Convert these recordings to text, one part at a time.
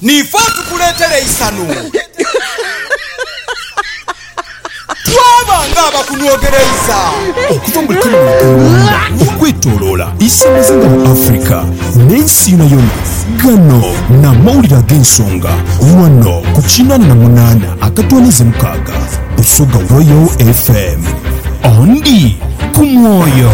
Niifo tukuleetera eisanhu. Twaba ng'abakunhwogereiza. Okuva mu Kenya e Rwanda okwetoloola isamazinga mu Africa n'ensi yonayona, gano n'amawulire ag'ensonga wano ku kinaana na munaana akatwaniiza mukaaga Busoga Royal FM. Andi ku mwoyo.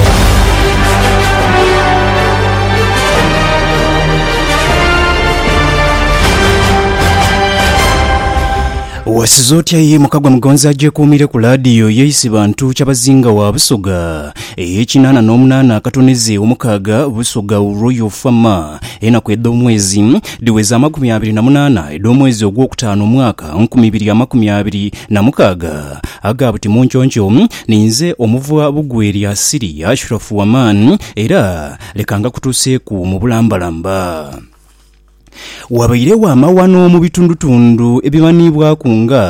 Wasiza otya ye mukagwa mugonzi agyekuumire ku laadiyo yeisi bantu kyabazinga wa Busoga ey'ekinaana n'omunaana akatoneze omukaaga Busoga Royal Farmer enaku edh'omwezi dhiweza amakumi abiri na munaana edh'omwezi ogwokutaano omwaka nkumi ibiri amakumi abiri na mukaaga aga buti munconco ninze omuvwa Bugweri Asiri Ashrafu Waman era Leka ngakutuuseeku mu bulambalamba. Wabairegho amaghano mu bitundutundu ebimanhiibwaku nga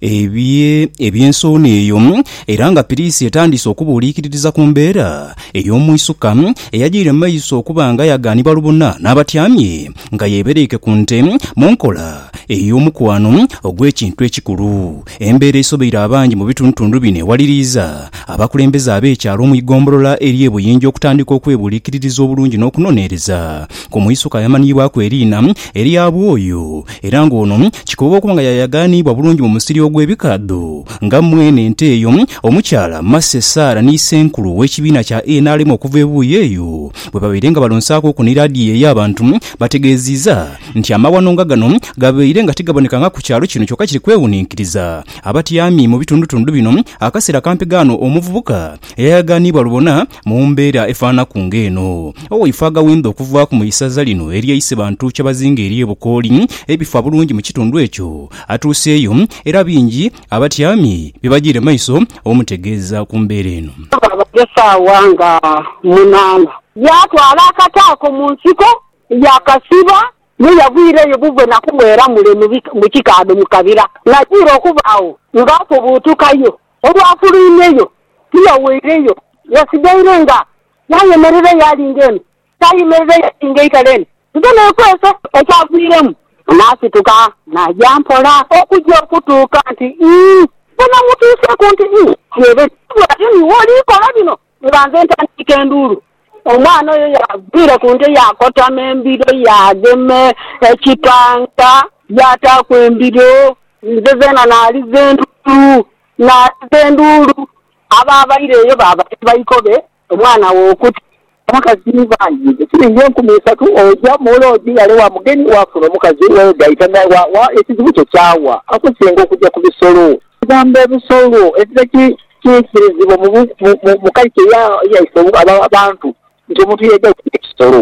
ebye eby'ensowni eyo, era nga Piriisi etandiise okubuuliikiririza ku mbeera ey'omwisuka eyajaire mu maiso okuba nga yagaanibwa lubona n'abatyamye nga yeebereike ku nte mu nkola ey'omukwano ogw'ekintu ekikulu. Embeera esobeire abangi mu bitundutundu bino ewaliriiza abakulembeze ab'ekyalo mu ighombolola ery'e Buyinjo okutandika okwebuulikiririza obulungi n'okunoneereza ku mwisuka ayamanhiibwaku eriina erya Bwoyo era nga ono kikoba okuba nga yayagaaniibwa bulungi mu musiri ogw'ebikaadho nga mwene ente eyo Omukyala Mercy Sarah ni Ssenkulu w'ekibiina kya nrm okuva ebuuyi eyo bwebabaire nga balonsaaku okunira adhiyeeyo abantu bategeeziiza nti amaghano nga gano gabaire nga tigabonekanga ku kyalo kino kyoka kiri kwewuninkiriza abatyami mu bitundutundu bino akaseera kampi ghano omuvubuka eyayagaanibwa lubona mu mbeera efaanaku ng'eno. Owaife aghawendha okuvaaku mu isaza lino erye Isebantu Kyabazinga erye Bukooli ebifa bulungi mu kitundu ekyo atuuseeyo era bingi abatyami bye bajiire maiso omutegeeza ku mbeera eno. Twabagho esaawa nga munaana yaatwala akataako mu nsiko Yaakasiba, ye yagwira eyo buvwe na kughera mule mu kikaadho mu kabira. Naidha okuba agho ng'afubuutukayo. Olwafulwimyeyo, tiyaweireyo, yasigaire nga yayemerera eyo ali ng'eno, yaayemerera eyo ali ng'eitale eno, nze neekwese. Ekyagwiremu, naasituka naaja mpola okugya okutuuka nti ii, we namutuuseeku nti ii, yeebeta, bw'atyo ni wooli kola bino. Nga nze ntandiika enduulu, omwana oyo yaagwira ku nte yaakotama embiro yaagema ekitanka yaataaku embiro. Nze zeena naaliza enduulu, naaliza enduulu. Abo abaireyo baaba ni baikobe omwana wo okuta. Omukazi ni baayi be siringi enkumi isatu, oja mu loogi ghale wa mugeni waafuna omukazi, weegaita naye wa, wa, ekizibu kyo kyawa? Akusinga okuja ku bisolo. Ebigambo ebisolo ebibe kiikirizibwa mu kalcha yaife abantu nti omuntu yaidha okuba ekisolo.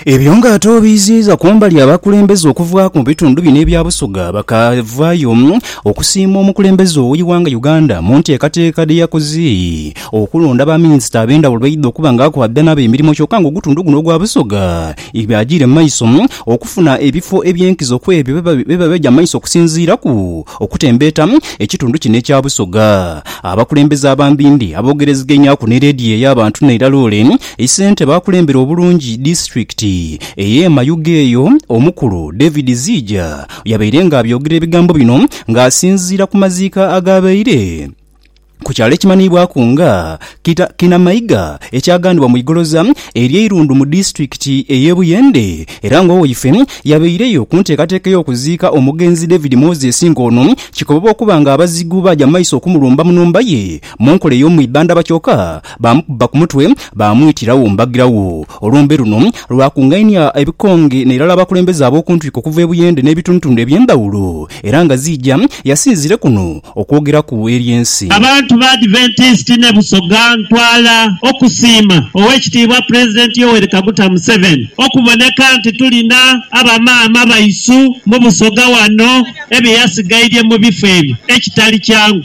Ebyo nga ate obiiziiza kumbali abakulembeze okuvaaku mu bitundu bino ebya Busoga bakavaayo okusiima omukulembeze oweighanga Uganda mu nteekateeka dheyakoze okulonda ba minisita abendhawulo beidha okuba nga akwabidha nabo emirimo kyoka nga ogutundu guno ogwa Busoga byajiire mu maiso okufuna ebifo ebyenkizo kwebyo byebaja mu maiso okusinziiraku Okutembeeta ekitundu kino ekya Busoga, abakulembeze abambindhi aboogereziganyaku ni leediyo ey'abantu n'eirala ole isente baakulembera obulungi disitulikiti ey'e Mayuge eyo omukulu David Ziija yabaire nga abyogera ebigambo bino nga asinziira ku maziika agaabaire ku kyalo ekimanhiibwaku nga Kinamaiga ekyagandhibwa mu igoloza ery'e Irundu mu disitulikiti ey'e Buyende era nga owaife yabaireyo ku nteekateeka ey'okuziika omugenzi David Moses nga ono kikoboba okuba nga abazigu baaja mu maiso okumulumba mu nhumba ye mu nkola ey'omwidhandhaba kyoka Baamukubba ku mutwe, baamwitira wo mbagira wo. Olumbe luno lwakungainia ebikonge n'eirala abakulembeze ab'oku ntwiko okuva e Buyende n'ebitundutundu eby'endhawulo, era nga Ziija yasinzire kuno okwogeraku eri ensi. Abantu ba Adventist ne Busoga ntwala okusiima Owekitiibwa President Yoweri Kaguta Museveni okuboneka nti tulina aba maama baisu mu Busoga wano ebye yasigairye mu bifo ebyo ekitali kyangu.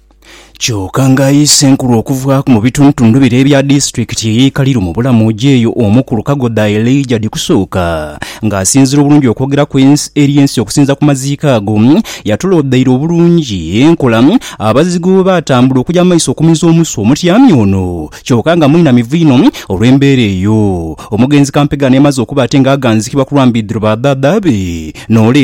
Kyoka nga ayi Ssenkulu okuvaaku mu bitundutundu bire ebya disitulikiti ey'e Kaliru mu Bulamuuji eyo Omukulu Kagoda Elijah Dhikusuuka nga asinzira obulungi okwogeraku eri ensi okusinza ku maziika ago yatuloodaire obulungi enkola abazigu bwebatambula okuja mu maiso okumiza omusu omutyami ono kyoka nga mwinamivu inho olw'embeera eyo omugenzi Kampega nemaze okuba ate nga aganzikibwa ku lwa mbidhiro ba dhaadha be n'ole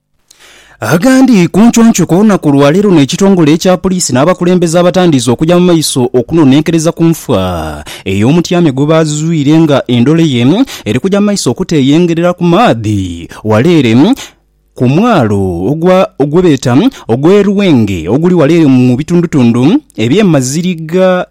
Agandi ku nconco ku lunaku lwa leero n'ekitongole ekya poliisi n'abakulembeze abatandiise okugya mu maiso okunonenkereza ku nfa ey'omutyame gwe baazuzwire nga endole ye eri kugya mu maiso okuteeyengerera ku maadhi wala ere ku mwalo ogwa gwe beeta ogw'e Lwenge oguli wala ere mu bitundutundu eby'e Maziriga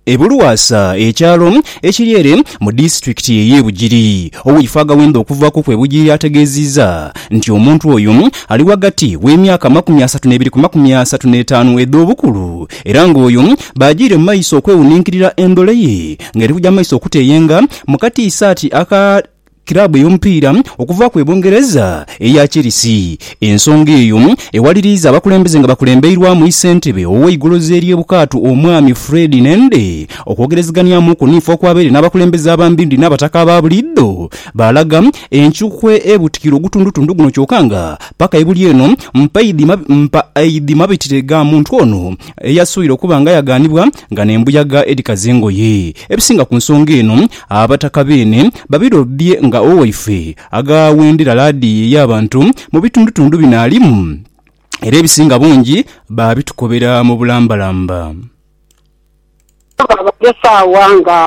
E Bulwasa, ekyalo ekiri ere mu disitulikiti ey'e Bugiri, owiifo Agawenda okuvaaku kw'e Bugiri ategeeziizza nti omuntu oyo ali ghagati w'emyaka amakumi asatu n'ebiri ku makumi asatu n'etaanu edh'obukulu era ng'oyo baajiire mu maiso okwewuninkirira endhole ye ng'eri kuja mu maiso okuteeyenga mu katiisaati aka kiraabu ey'omupiira okuva ku e Bungereza eya Chelsea. Ensonga eyo ewaliriiza abakulembeze nga bakulembeirwamu isentebe ow'eigolozi ery'e Bukaatu Omwami Fred Nende okwogerezeghanyamuuku ni fo kwabaire n'abakulembeze abambindi n'abataka aba buliidho baalaga enkyukwe ebutikira ogutundutundu guno kyoka nga paka ebuli eno mpaidhi mabitire ga muntu ono eyasoire okuba nga yagaanibwa nga n'embuyaga edhikaza engoye. Ebisinga ku nsonga eno, Abataka beene babirobbye nga owaife aghawendera laadiyo ey'abantu mu bitundutundu bino alimu, era ebisinga bungi baabitukobera mu bulambalamba. Twaba esaawa nga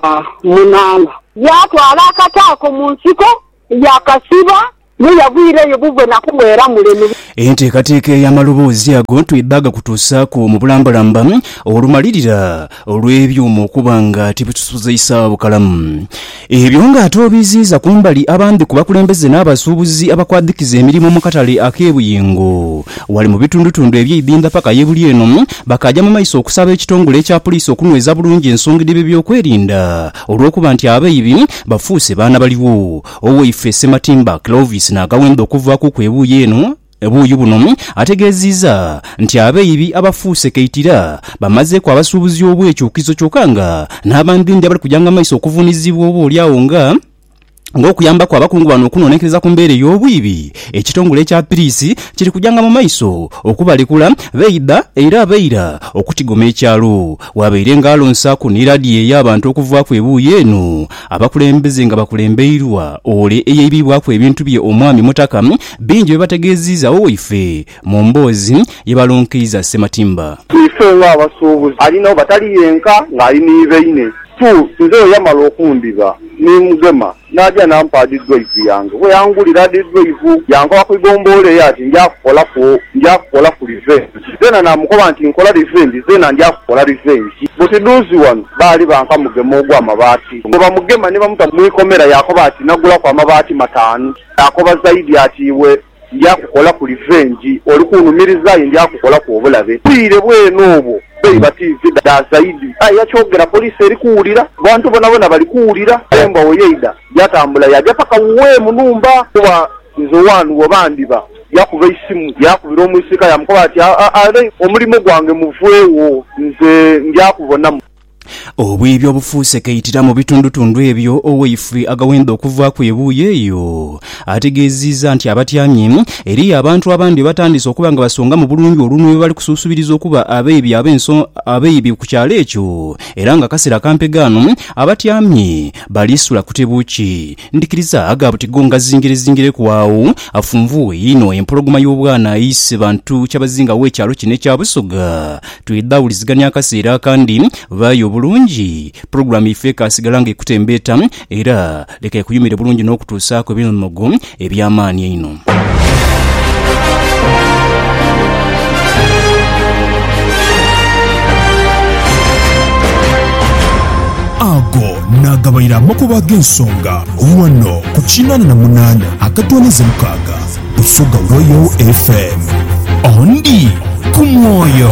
munaana, yaatwala akata ako mu nsiko Yaakasiba, ye yagwira eyo buvwe na kuwera mule mu. Enteekateeka ey'amaloboozi ago twidhaga kutuusaaku mu bulambalamba olumalirira olw'ebyuma okuba nga tibitusuzeisagho bukalamu. Ebyo ng'ate obiiziiza ku mbali abandhi ku bakulembeze n'abasuubuzi abakwadhikiza emirimo mu katale ak'e Buyingo ghale mu bitundutundu eby'eidhindha paka ye buli eno, bakaaja mu maiso okusaba ekitongole ekya Puliisi okunyweza bulungi ensonga dh'ebyeby'okwerinda olw'okuba nti abaibi Bafuuse baana baligho. Owaife Ssematimba Clovis Nagawemba okuvaakuku ebuuyi eno, ebuuyi buno ategeeziiza nti abeibi abafuuse kaitira bamazeeku abasuubuzi obwekyukizo kyoka nga n'abandindi abali kujanga maiso okuvuunizibwa oba oli agho nga ng'okuyambaku abakungu bano okunoonenkereza ku mbeera ey'obwiibi ekitongole ekya Piriisi kiri kujanga mu maiso okubalekula beiba era abeira okutigoma ekyalo Bwabaire nga alonsaaku ni ladiyo ey'abantu okuvaaku ebuuyi eno, abakulembeze nga bakulembeirwa ole eyaibibwaku ebintu bye Omwami Mutaka, bingi bye bategeeziiza Owaife mu mboozi ye balonkeiza Ssematimba. Ife nga abasuubuzi ali nabo batali yenka nga ali ni baine. Two, nze bwe yamala okundhiba ni mugema N'aja n'ampa dhidhwaivu yange. Bwe yangulira dhidhwaivu, yankoba ku igomboolo eyo ati, Nja kukolaku, nja kukolaku livengi. Zeena naamukoba nti, Nkola livengi, zeena nja kukola livengi. Buti dhuuzi ghano baali banka mugema ogw'amabaati. Bwe bamugema ni bamuta mu ikomera, yaakoba ati, Nagulaku amabaati mataanu. Yaakoba zaidi ati, Iwe Ndya kukolaku livengi. Oli kunhumiriza aye ndya kukolaku obulabe. Bwire bwene obwo beiba tiivi dha zaidi. Aye yakyogera poliisi eri kuwulira. Abantu bonabona bali kuwulira. Aye mbwa wo yaidha yatambula yaja paka wuwe mu nhumba. Kuba nze one wo bandiba. Yakuba eisimu yakubira omwisiika yamukoba ati, Aa, Ray, omulimo gwange muvwegho. Nze ndya kubonamu. Obwibi obufuuse kaitira mu bitundutundu ebyo owaifwe agawenda okuvaaku ebuuyi eyo ategeeziza nti abatyamye eriyo abantu abandi bebatandise okuba nga basongamu bulungi olunwe bebali kusuusubiriza okuba abeibi abeibi ku kyalo ekyo era nga akasera kampe ghano abatyamye bali sula kutebo ki ndhikiriza agha buti go ngazingirezingireku agho afunvuuwe inho empologoma y'obwana eise bantu kyabazinga w'ekyalo kino ekya Busoga Twidha wulizigania akaseera akandi, ghaayo obulungi, pulogulaamu yaife ekaasigala nga ekutembeeta, era leka ekuyumire bulungi n'okutuusaaku ebimogo eby'amaani einho. Ago naagabaire amakubo ag'ensonga ghano ku kinaana na munaana akatooneza mukaaga Busoga Royal FM. Ondi ku mwoyo.